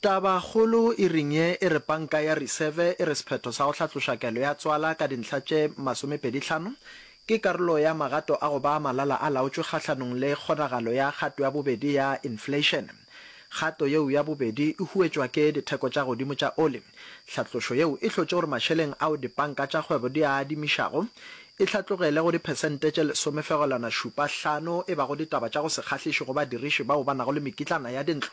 Tabakgolo e ring ye e re Panka ya Reserve e re sephetho sa go hlatloša kelo ya tswala ka dintlha tše masomepedi tlhano ke karolo ya magato a go ba malala-a-laotšwe kgahlanong le kgonagalo ya kgato ya bobedi ya infleišene. Kgato yeo ya bobedi e huetšwa ke ditheko tša godimo tša oli. Hlatlošo yeo e hlotše gore mašeleng ao dipanka tša kgwebo di a adimišago e hlatlogele go diphesente tše lesomefegelwana-šupa hlano e bago ditaba tša go se kgahliše go badiriši bao ba nago le mekitlana ya dintlo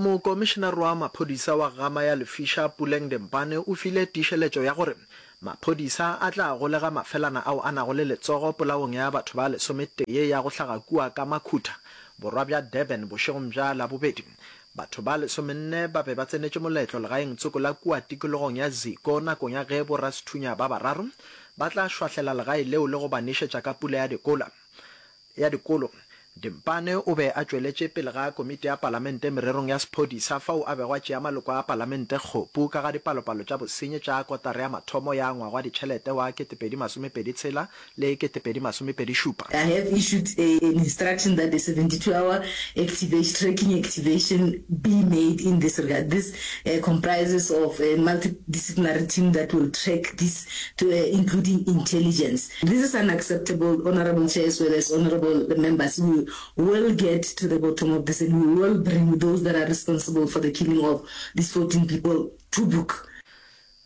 Mokomišenaroa maphodisa wa Gama ya Lefisha Puleng Dempane o file tiišeletšo ya gore maphodisa a tla golega mafelana ao a nago le letsogo polaong ya batho ba lesometee ya go hlaga kua ka Makhutha, borwa bja Durban bošegong bja Labobedi. Batho ba lesomenne ba be ba tsenetše moletlo legaeng tsoko la kua tikologong ya Ziko nakong ya ge borasethunya ba bararo ba tla šwahlela legae leo le go ba nešetša ka pula ya dikola. ya Dikolo, Dimpane o be a tšweletše pele ga Komiti ya Palamente mererong ya Sephodisa fao a bego a tšea maloko a Palamente kgopu ka ga dipalopalo tša bosenyi tša kotara ya mathomo ya ngwaga wa ditšhelete wa 2026 le 2027. I have issued a an instruction that a 72 hour activation tracking activation be made in this regard. This comprises of a multidisciplinary team that will track this to a including intelligence. This is unacceptable honourable chair as well as honourable members we will get to the bottom of this and we will bring those that are responsible for the killing of these 14 people to book.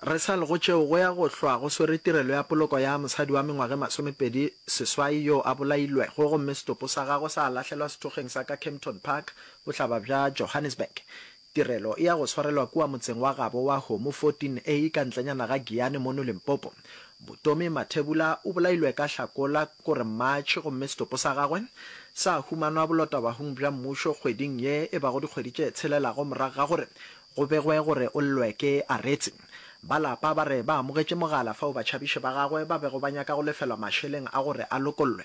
Re sa le go tšeo go ya go hlwa go swere tirelo ya poloko ya mosadi wa mengwaga e masomepedi seswai yo a bolailwego gomme setopo sa gagwe sa lahlelwa sethokgeng sa ka Kempton Park bohlaba bja Johannesburg. Tirelo ya go swarelwa kua motseng wa gabo wa Homu 14 A ka ntlenyana ga Giyani mono Limpopo. Butomi Mathebula o bolailwe ka Hlakola gore March gomme setopo sa gagwe sa humanwa bolotawahung bja mmušo kgweding ye e bago dikgwedi tše tshelelago morago ga gore go begwe gore o llwe ke Aretse. Ba lapa ba re ba amogetše mogala fao batšhabiši ba gagwe ba bego ba nyaka go lefelwa mašeleng a gore a lokollwe.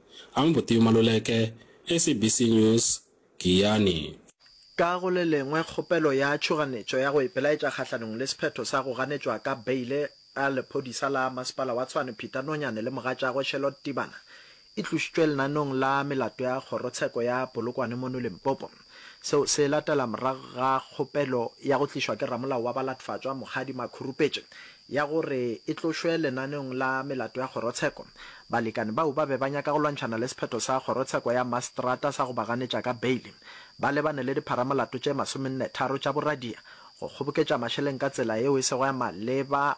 Ang Boteo Maluleke, SABC News, Giyani. Ka go le lengwe, kgopelo ya tšhoganetšo ya go ipelaetša kgahlanong le sephetho sa go ganetšwa ka beile ga lephodisa la masepala wa Tshwane Peter Nonyane le mogatšagwe Charlotte Tibana e tlošitšwe lenaneong la melato ya kgorotsheko ya Polokwane mono Limpopo. Seo se latela morago ga kgopelo ya go tlišwa ke ramolao wa balatfatšwa Mokgadi Makhurupetše ya gore e tlošwe lenaneong la melato ya kgorotsheko. Balekane bao ba be ba nyaka go lwantšhana le sephetho sa kgorotsheko ya maseterata sa go ba ganetša ka beile. Ba lebane le dipharamolato tše masomennetharo tša boradia, go kgoboketša mašeleng ka tsela yeo e sego ya maleba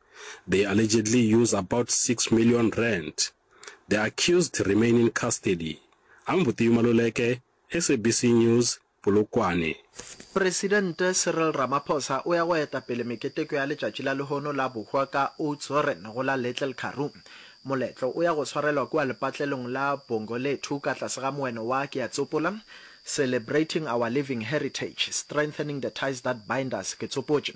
They allegedly use about six million rand. The accused remain in custody. Ambutiu Maluleke, SABC News, Polokwane. Presidente Cyril Ramaphosa o ya go eta pele meketeko ya letšatši la lehono la bohwa ka Oudtshoorn go la Little Karoo. Moletlo o ya go swarelwa kua lepatlelong la Bongo Lethu ka tlase ga moeno wa Ke a Tsopola, Celebrating Our Living Heritage, Strengthening the Ties That Bind Us, Ke Tsopotše,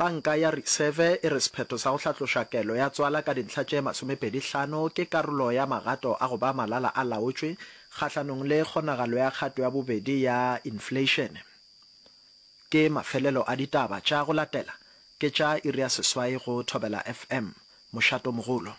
Panka ya Reserve e re sephetho sa go hlatloša kelo ya tswala ka dintlha tše masomepedi hlano ke karolo ya magato a go ba malala a laotšwe kgahlanong le kgonagalo ya kgato ya bobedi ya infleišene. Ke mafelelo a ditaba tša go latela, ke tša iri ya seswai go Thobela FM. Mošato mogolo.